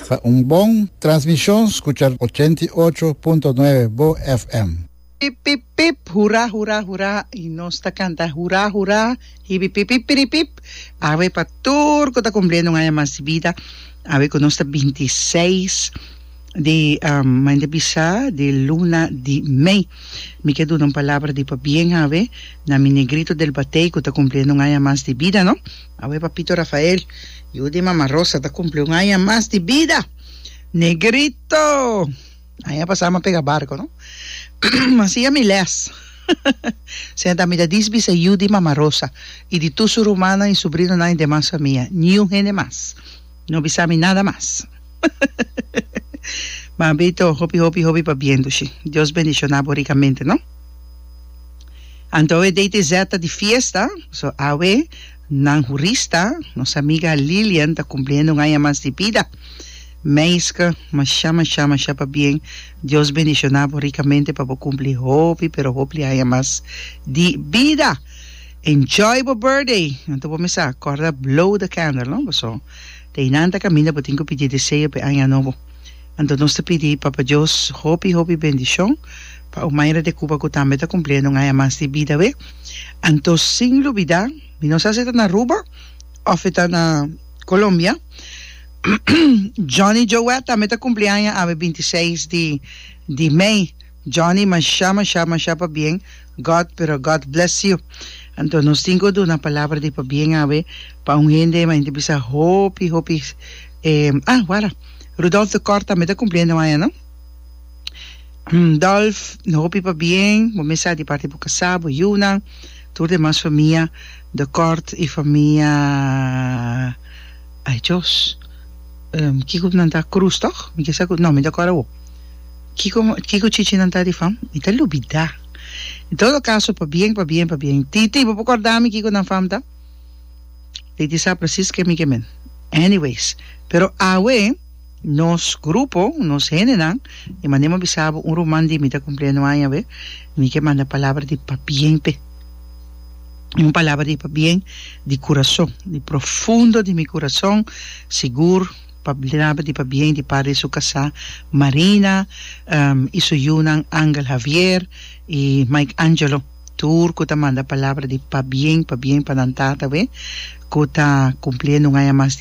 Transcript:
Pa un bon transmishon skucha ochenta i ocho punto nuebe bo FM. Pip pip pip hura hura hura y nos ta canta hura hura hibi pip pip piri pip awe pa tur cu ta cumpliendo un aña mas di vida awe cu nos ta binti seis di maña bisa di luna di mei mi ke duna un palabra di pabien awe na mi negrito del batey ku ta kumpliendo un aña mas di bida no awe papito Rafael yu di mama Rosa ta kumpli un aña mas di bida negrito aña pasa mi a pega barco no mi siña mi les seña ta mi ta dies bisa yu di mama Rosa i di tur su rumannan i subrinonan i demas famia niun hende mas. No bisa mi nada mas. Mambito hopi hopi hopi pabiendo shi. Dios bendiciona bo ricamente no. Anto awe DTZ ta di fiesta, so awe nan hurista, nos amiga Lilian ta cumpliendo un aña mas di bida. Meiske masha masha masha pabien Dios bendiciona bo ricamente pa bo cumpli hopi pero hopli aña mas di bida. Enjoy bo birthday! Nan ta por mester a corda blow the candle, no? Paso, di einan ta caminda bo tin cu pidi deseo p'e aña nobo. Anto nos ta pidi Papa Dios hopi, hopi bendicion pa Omaira de Cuba cu tambe ta cumpliendo un aña mas di bida awe. Anto sin lubida, mi no sa si ta na Aruba of e ta na Colombia, Johnny Joet tambe ta cumpli aña awe binti seis di, di mei. Johnny masha masha masha pabien God pero God bless you anto nos tin cu duna palabra di pabien awe pa un hende e mente bisa hopi hopi eh ah wara Rudolf de Kort tambe ta cumpliendo aña no Dolf hopi pabien bo mes sa di parti bo casa bo yunan tur demas famia de Kort y famia ay Dios kico nan ta Cruz toch mi ke sa cu no mi ta cora awo. Kiko kiko chichinan ta rifam? Mi ta lubidá. En todo kaso, pa bien, pa bien, pa bien. Titi, bo por kòrda mi kiko nan fam ta? Titi sa presis ke mi ke men. Anyways, pero awe nos grupo, nos hendenan, e manera mi a bisa bo un ruman di mi ta kumpliendo aña awe, mi ke manda palabra di pabien p'e. Un palabra di pabien di kurason, di profundo di mi kurason, sigur. pa bleraba di pabien di parti di su kasá Marina i su yunan Angel Javier i Mike Angelo tur ku ta manda palabra di pabien pabien pa nan tata awe ku ta kumpli e nungaña mas.